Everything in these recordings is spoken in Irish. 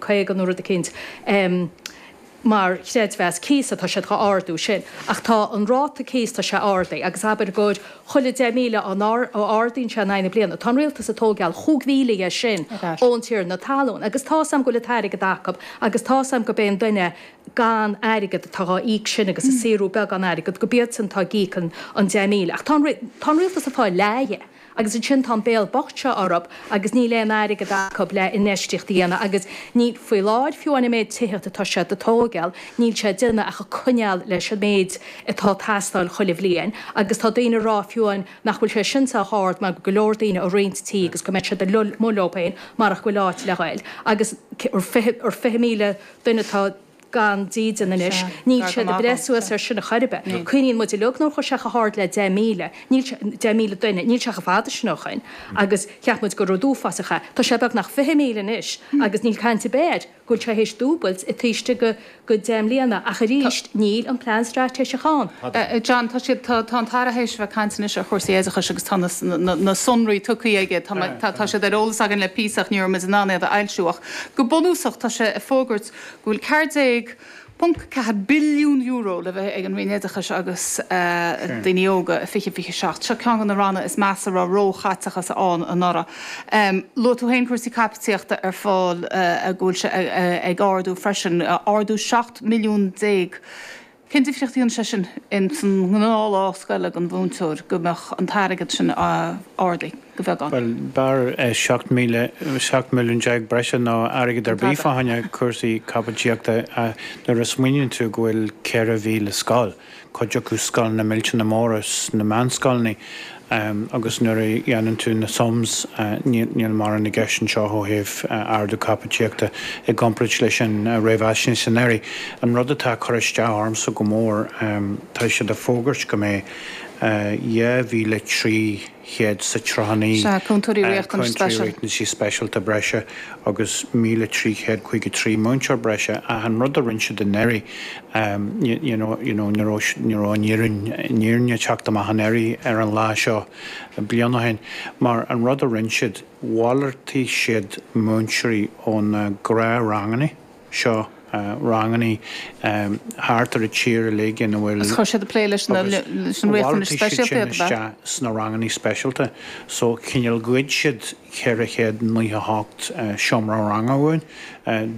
50 nó rud eicínt mar chreidmheas cíosa, tá siad dhá ardú sin. Ach tá an ráta cíos, tá sé ardaí agus abair gur chuile 10,000 a n-ardaíonn sé in aghaidh na bliana, tá an rialtas ag tógáil chúig mhíle dhe sin ón tiarna talún. Agus tá's a'm go bhfuil an t-airgead acu agus tá's a'm gurb é an duine gan airgead atá á íoc sin agus ag saothrú beagán airgead, go b'iadsan atá ag íoc an 10,000. Ach tá an rialtas ag fáil leath dhe. Agus ansin tá an béal bocht seo orthub agus níl aon airgead acub le infheistíocht a dhéanamh agus níl, faoi láthair fiú amháin, an méid tithíocht atá siad ag tóigeál, níl sé ag déanamh ach ag coinneál leis an méid atá ag teastáil chuile bhliain agus tá daoine ag rá fiú amháin nach bhfuil sé sin sách ard mar go leor daoine ag roinnt tí agus go mbeadh siad amuigh leob féin marach nach bhfuil áit le dhoil agus fiche míle duine atá ag gan dídean anois. Níl siad ag breith suas ar sin chor ar bith. Cuimhníonn muid uilig nuair a chuaigh sé chomh hard le deich míle, níl sé, deich míle duine, níl sé chomh fada sin ó shoin agus cheap muid gur rud uafásach é. Tá sé beagnach fiche míle anois agus níl caint ar bith air go bhfuil sé théis dúbailt taobh istigh de dheich mbliana ach arís níl an plean straitéiseach ann. John, Tá siad, tá, tá an tAire théis a bheith ag caint anois ar chúrsaí oideachais agus tá na, na, na sonraí tugthaí aige, tá mé, tá, tá siad ar eolas againn le píosa ach ní raibh muid in ann iad a fhoilsiú ach go bunúsach tá sé ag fógairt go bhfuil €14.4 billiún le bheith ag an Roinn Oideachais agus Daoine Óga i 2027. Seo ceann de na ranna is measa a raibh róchaiteachas ann anuraidh. Luaigh tú féin cúrsaí caipitíochta ar ball go bhfuil sé ag ardú freisin, ardú €17 milliún Cén difríocht a dhéanann sé sin ins an ngnáth-lá scoile don mhúinteoir go mbeadh an t-airgead sin ardaí go beagán? Bhuel, b'fhearr seacht míle, seacht milliún déag breise ná airgead ar bith fá choinne cúrsaí caipitíochta nuair a smaoiníonn tú go bhfuil ceithre mhíle scoil, cuid acu scoileanna millteanna móra sna meánscoileanna, Ahem, agus nuair a dhéanann tú na sums, níl mórán i gceist anseo ó thaobh ardú caipitíochta i gcompráid leis an réamhaisnéis anuraidh. An rud atá ag cur isteach ormsa go mór, tá siad ag fógairt go mbeidh 2,300 SNAannaí, Sea, Cúntóirí Riachtanais Speisialta. Cúntóirí Riachtanaisí Speisialta breise agus 1,353 múinteoir breise ach an rud a rinne siad anuraidh, you know ní raibh, ní raibh an fhírinne, an fhírinne ag teacht amach anuraidh ar an lá seo bliain ó shin mar an rud a rinn siad, mhalartaigh siad múinteoirí ó na gnáthranganna seo, ranganna thart ar an tír uilig ina bhfuil. Agus chuir siad ag plé leis na, leis an riachtanais speisialta iad, ab ea? Agus chuir siad sin isteach sna ranganna speisialta so chineál ghoid siad, 498 seomra ranga uainn.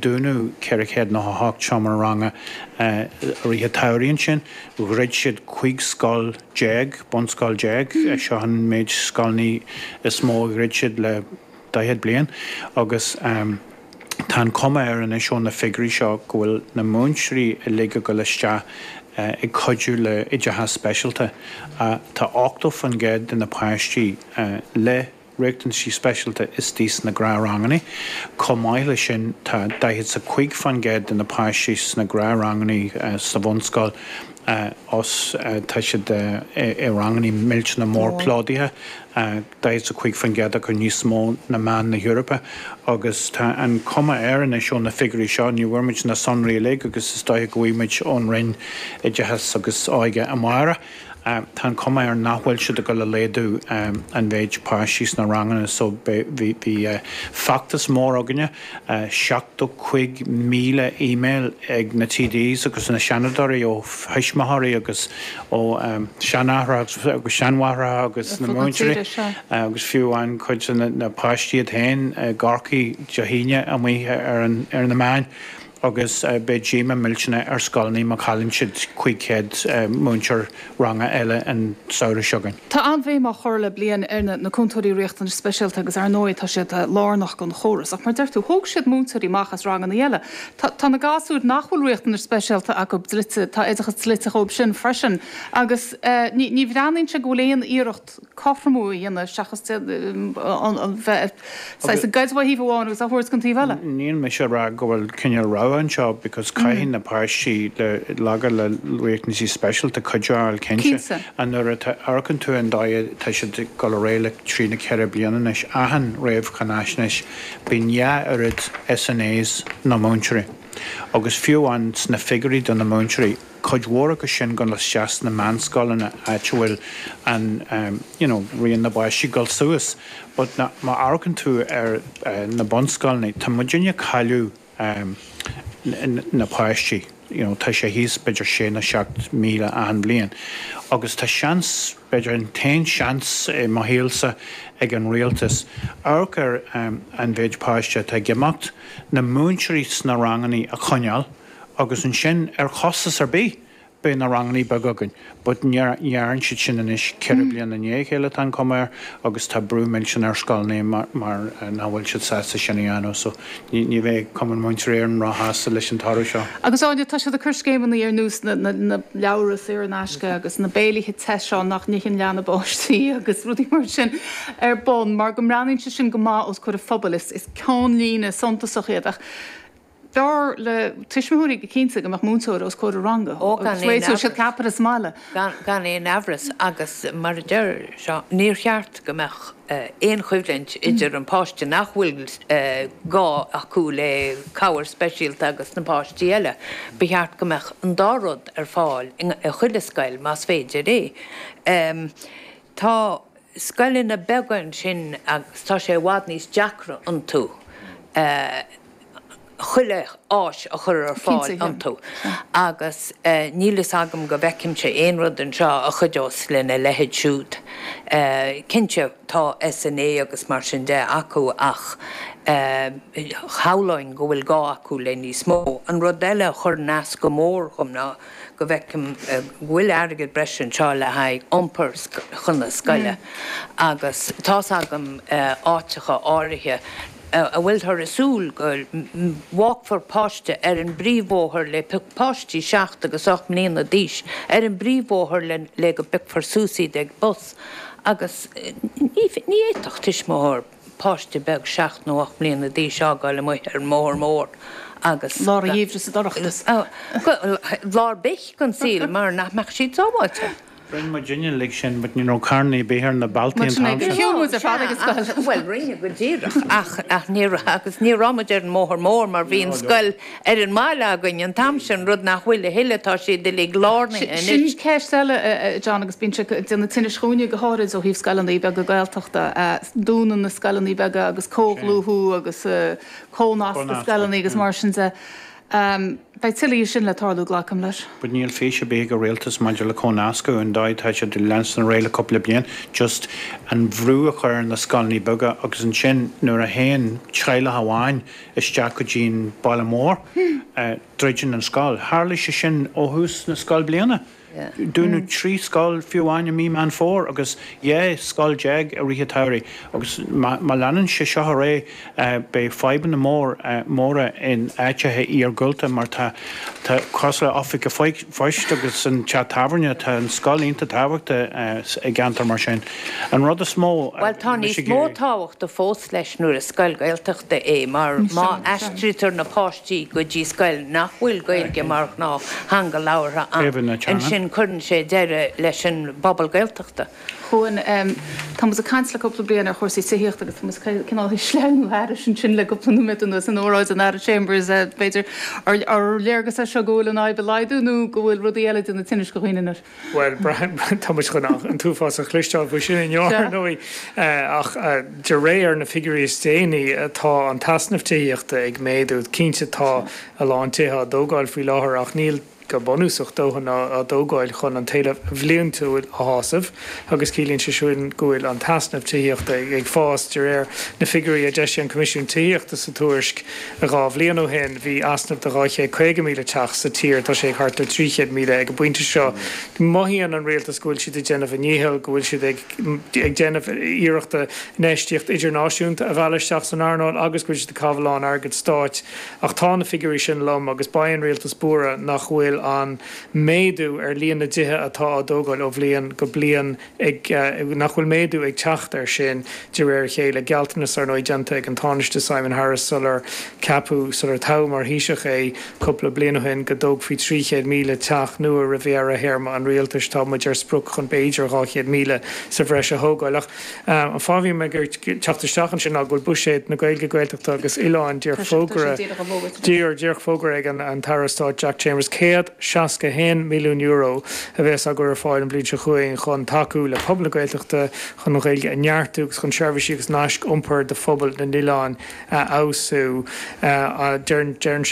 Dúnadh 498 seomra ranga i rith an tsamhraidh ansin. Dhruid siad 15 scoil déag, bunscoil déag. Seo an méid scoileanna is mó a dhruid siad le daichead bliain agus tá an chuma air anois ó na figiúirí seo go bhfuil na múinteoirí uilig ag dul isteach ag cuidiú le oideachas speisialta. Tá 80% de na páistí le. riachtanaisí speisialta istigh sna gnáthrangannaí. Chomh maith le sin tá daichead 's a cúig fán gcéad de na páistí sna gnáthrangannaí sa bhunscoil os tá siad i rangannaí millteanach mór plódaithe, daichead 's a cúig fán gcéad acu níos mó na meán na hEorpa agus tá an cuma air anois ó na figiúirí seo, ní bhfuair muid na sonraí uilig agus is dóiche go bhfuighmid ón Roinn Oideachais agus Óige amárach, Tá an chuma air nach bhfuil siad ag dul a laghdú an mhéid páistí sna ranganna so bhí feachtas mór againne, 70 cúig míle email ag na TDs agus na Seanadóirí ó thuismitheoirí agus ó sheanaithreacha agus seanmháithreacha agus na múinteoirí agus fiú amháin cuid de na páistí iad féin i gCorcaigh Dé hAoine amuigh ar na meáin. agus beidh díomá millteanach ar scoileanna má chailleann siad 500 múinteoir ranga eile an samhradh seo chugainn. Tá an-bhéim á chur le bliain ar na na Cúntóirí Riachtanais Speisialta agus ar ndóigh tá siad lárnach don chóras. Ach mar deir tú, thóg siad múinteoirí amach as ranganna eile. Tá tá na gasúir nach bhfuil riachtanais speisialta acu dlite, tá oideachas dlite dhóibh sin freisin agus ní ní bhreathnaíonn sé go bhfuil aon iarracht cothromú a dhéanamh seachas bheith saghas ag goid ó thaobh amháin agus á thabhairt gon taobh eile. Níl mise ag rá go bhfuil cineál rogha anseo because caithfidh na páistí le laga le riachtanaisí speisialta cuidiú a fháil cinnte. Nuair a amharcann tú an dóigh atá siad ag dul ar aghaidh le trí nó ceithre bliana anois achan réamhcháinaisnéis bíonn dhá oiread SNAs ná múinteoirí agus fiú amháin sna figiúirí do na múinteoirí cuid mhór acu sin dul isteach sna meánscoileanna áit a bhfuil an you know raon na bpáistí ag dul suas but má amharcann tú ar na bunscoileanna tá muid ag cailleadh na páistí you know tá sé thíos b'fhéidir sé nó seacht míle achan bliain agus tá seans b'fhéidir an t-aon seans i mo shaolsa ag an rialtas amharc ar an mhéid páiste atá ag imeacht, na múinteoirí sna ranganna a choinneáil. Agus ansin, ar chostas ar bith, beidh na rangannaí beaga againn. But ní dhearn siad sin anois. Ceithre bliana i ndiaidh a chéile, atá an chuma air, agus tá brú millteanach ar scoileanna mar nach bhfuil siad sásta sin a dhéanamh. So, ní bheidh Cumann Múinteoirí Éireann ró-shásta leis an toradh seo. Agus Áine, tá siad ag cur scéimeannaí ar nós na leabhra saor in aisce agus na béilithe te seo nach n-itheann leath na bpáistí agus rudaí mar sin ar bun mar go mbreathnaíonn siad sin go maith os comhair an phobail. Is ceannlíne suntasach iad ach. Dar le tuismitheoirí go cinnte go mbeadh múinteoir os comhair a ranga agus réiteodh siad ceapaire sa mbaile. Gan aon amhras agus mar a deir Seán, níor cheart go mbeadh aon choimhlint idir na páistí nach bhfuil gá acu le cabhair speisialta agus na páistí eile. Ba cheart go mbeadh an dá rud ar fáil i chuile scoil más féidir é. Tá scoileanna beaga ansin agus tá sé i bhfad níos deacra iontu. chuile áis a chur ar fáil iontu agus níl fhios agam go bhfeicimse aon rud anseo a chuideos lena leithéid siúd. Cinnte tá SNA agus mar sin de acu ach shamhlóinn go bhfuil gá acu le níos mó. An rud eile a chuir as go mór dhom ná go bhfeicim go bhfuil airgead breise anseo le haghaidh iompar chun na scoile agus tá's agam áiteacha áirithe, a bhfuilthear ag súil go bhfágfar páiste ar an bpríomhbhóthar le páistí seacht agus ocht mbliana d'aois ar an bpríomhbhóthar le le go bpiocfar suas iad ag bus agus ní ní fhéadfadh tuismitheoir páiste beag seacht nó ocht mbliana d'aois a fhágáil amuigh ar an mbóthar mór agus Lár an gheimhridh sa dorchadas. gá ar bith den saol mar nach mbeadh siad sábháilte. Rinne muidinne uilig sin but ní raibh carr ar bith ar na bealtaí an t-am sin. Shiúl muid ar fad ag an scoil. Bhuel, rinne go díreach ach ní raibh agus ní raibh muid ar an mbóthar mór mar bhí an scoil ar an mbaile againn an t-am sin, rud nach bhfuil a thuilleadh, tá siad uilig lárnaithe anois. Sin ceist eile a John agus bíonn sé ag déanamh tinnis dhuine go háirid ó thaobh scoileanna beaga Gaeltachta. Dúnadh na scoileanna beaga agus comhdhlúthú agus comhnascadh scoileanna agus mar sin de. Ámh, beidh tuilleadh dhe sin le tarlú, glacaim leis. But níl fís ar bith ag an rialtas maidir le comhnascadh, an dóigh atá siad ag leanstan ar aghaidh le cúpla bliain, just an brú a chur ar na scoileannaí beaga agus ansin nuair a théann teaghlach amháin isteach go dtí an baile mór, druideann an scoil. Tharlaigh sé sin ó thús na scoilbhliana. Dúnadh mm. trí scoil fiú amháin i mí Meán Fómhair agus dhá scoil déag i rith an tsamhraidh agus má, má leanann sé seo ar aghaidh eh, beidh fadhbanna mór, eh, móra in áiteacha iargúlta mar tá, tá cosúil le Oifig an Phoist agus an teach tábhairne, tá an scoil iontach tábhachtach eh, s- i gceantar mar sin. An rud is mó a Bhuel tá bhí sé níos ag mó iarraidh tábhacht fós leis nuair is scoil Gaeltachta é mar Ní má seo, seo. aistrítear na páistí go dtí scoil nach bhfuil Gaeilge mar ghnáth-theanga labhartha. Ansin cuireann sé deireadh leis an bpobal Gaeltachta. A Chuáin, tá muid ag caint le cúpla bliain ar chúrsaí tithíochta agus tá muid cineál ag sleamhnú thairis sin le cúpla nóiméad anuas in óráid an Aire Chambers, b'fhéidir. Ar léargas é seo go bhfuil an fhadhb ag laghdú nó go bhfuil rudaí eile ag déanamh tinnis do dhaoine anois? Bhuel, tá muid chun an t-uafás a chloisteáil faoi sin inniu, ar ndóigh, ach de réir na figiúirí is déanaí, atá an t-easnamh tithíochta ag méadú. Cinnte, atá a lán tithe á dtógáil faoi láthair ach níl, go bunúsach, dóthain á dtógáil chun an t-éileamh bhliantúil a shásamh agus ciallaíonn sé sin go bhfuil an t-easnamh tithíochta ag fás, de réir na figiúirí a d'eisigh an Coimisiún Tithíochta sa tuairisc. Dhá bhliain ó shin bhí easnamh de 250,000 teach sa tír, atá sé ag thart ar 300,000 ag an bpointe seo. Mothaíonn an rialtas go bhfuil siad ag déanamh a ndícheall, go bhfuil siad ag déanamh iarrachta infheistíocht idirnáisiúnta a mhealladh isteach san earnáil agus go bhfuil siad ag caitheamh a lán airgead stáit ach tá na figiúirí sin lom agus beidh an rialtas buartha nach bhfuil an méadú ar líon na dtithe atá á dtógáil ó bhliain go bliain ag nach bhfuil méadú ag teacht air sin de réir a chéile, gealltanas, ar ndóigh, déanta ag an Tánaiste Simon Harris sular ceapadh, sular toghadh mar Thaoiseach é cúpla bliain ó shin, go dtógfaí 300,000 teach nua roimh dheireadh théarma an Rialtais. Atá muid ar sprioc chun b'fhéidir 200,000 sa bhreis a thógáil. Ach an fáth a bhí mé ag teacht isteach ansin ná go bhfuil buiséad na Gaeilge, Gaeltachta agus Oileáin díreach fógartha, díreach fógartha ag an tAire Stáit Jack Chambers. €161 milliún a bheas á gcur ar fáil an bhliain seo chugainn chun tacú le pobal na Gaeltachta, chun an Ghaeilge a neartú agus chun seirbhísí agus naisc iompair do phobail na n-oileán a fheabhsú. Deir an.